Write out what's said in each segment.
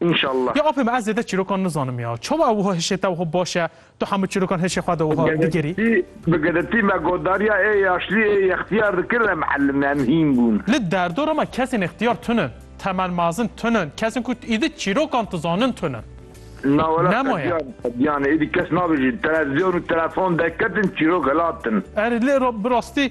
Înşallah. Ya apê min ez zêde çîrokan nizanim ya. Çawa wiha hişê te wiha baş e, tu hemû çîrokan hişê xwe de wiha digerî? Bi giritî me godariya ê yaşlî ê yextiyar dikin re miellim em hîn bûn. Li derdora me kesên ixtiyar tune in. Temel mazin tune in. Kesên ku êdî çîrokan dizanin tune in. Na were qediya qediyan e. Êdî kes nabêjin televizyon û telefon derketin çîrok hilatin. Erê lê bi rastî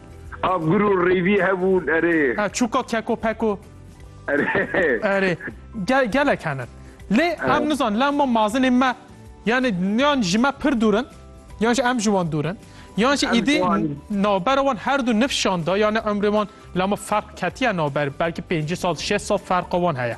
Av gur û rêvî hebûn erê. E, çûka keko peko. Erê. Erê. Gel, gelek henin. Lê em nizan lem ma mazinê me yani yan ji me pir dûr in yan jî em ji wan dûr in. Yan jî êdî navbera wan her du nif şan da yani umrê wan lama ferq ketiye navber belkî pêncî sal şeş sal ferqa wan heye.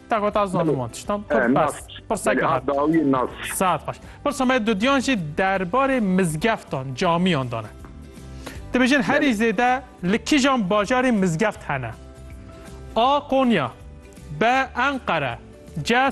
Tagota zanî wan tiştan pirseke hat dawiyê nas. Saet xweş. Pirsa me dudiyan jî derbarê mizgeftan, camiyan dane. Dibêjin herî zêde li kîjan bajarê mizgeft hene? A Konya, B Enqere, C